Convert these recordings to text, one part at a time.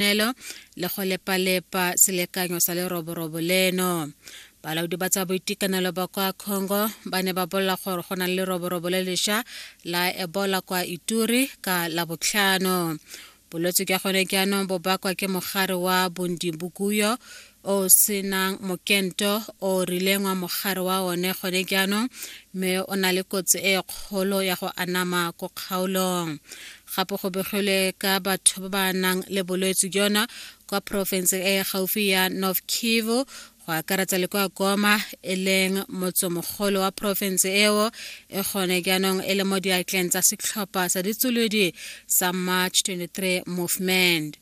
ditshwanelo le go lepalepa selekanyo sa leroborobo leno balaodi ba tsa boitekanelo ba kwa congo ba ne ba bolela gore go na le leroborobo le lesha la ebola kwa ituri ka labotlhano bolwetse jwa gone jaanong bo bakwa ke mogare wa bondibukuyo o senang mokento o rileng wa mogare wa one gone jaanong mme o na le kotsi e kgolo ya go anama ko kgaolong gape go begilwe ka batho ba ba nang le bolwetse jona kwa porofenseng e e gaufi ya north kivu go akaretsa le kwa goma e leng motsemogolo wa porofense eo e gone jaanong e le mo diatleng tsa setlhopha sa ditsolodi sa march 23 movement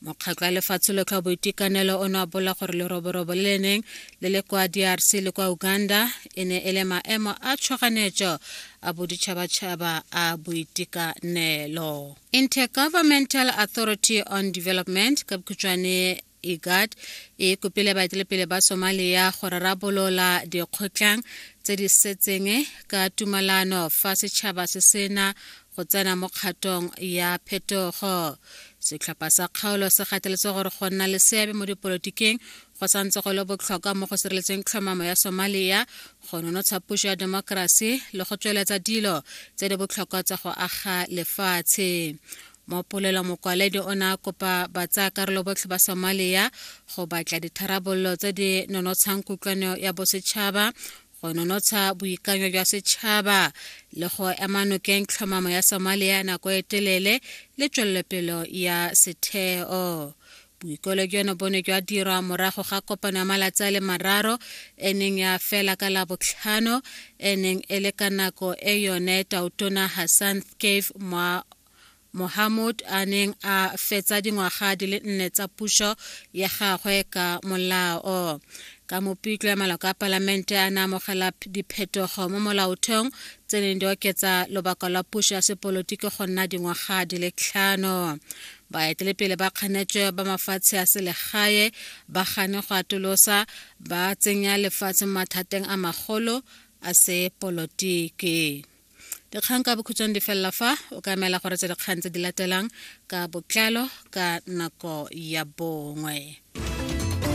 Mokgatlho wa Lefatshe Lotlhe wa Boitekanelo o ne wa bolela gore leroborobo le le neng le le kwa DRC le kwa Uganda e ne e le maemo a tshwaganetso a boditšhabatšhaba a boitekanelo. Intergovernmental Authority on Development ka bokhutšwane IGAD e kopile baetelepele ba Somalia go rarabolola dikgotlhang tse di setseng ka tumalano fa setšhaba se sena go tsena mo kgatong ya phetogo setlhopha sa kgaolo se gateletse gore go nna le seabe mo dipolotikeng go santse go le botlhokwa mo go sireletseng tlhomamo ya somalia go nonotsha puso ya demokrasi le go tsweletsa dilo tse di botlhokwa tsa go aga lefatshe mo polelo mokwaledi o ne a kopa batsayakarolo botlhe ba somalia go batla ditharabololo tse di nonotshang kutlwano ya bosetšhaba go nonotsha boikanyo jwa setšhaba le go ema nokeng tlhomamo ya somalia nako e telele le tswelelopelo ya setheo boikolo jono bo ne jwa dirwa morago ga kopano ya malatsi a le mararo e neng ya fela ka labotlhano e neng e le ka nako e yone tautona hassan cave mwa Mohamud a neng a fetsa dingwaga di le nne tsa puso ya gagwe ka molao. Ka Mopitlwe maloko a palamente a ne amogela diphetogo mo molaotheong tse neng di oketsa lobaka lwa puso ya sepolotiki go nna dingwaga di le tlhano. Baetelepele ba kganetswe ba mafatshe a selegae ba gane go atolosa ba tsenya lefatshe mo mathateng a magolo a sepolotiki. dikgang ka bokhutshwang di felela fa o ka emela gore tse dikgang tse di latelang ka botlalo ka nako ya bongwe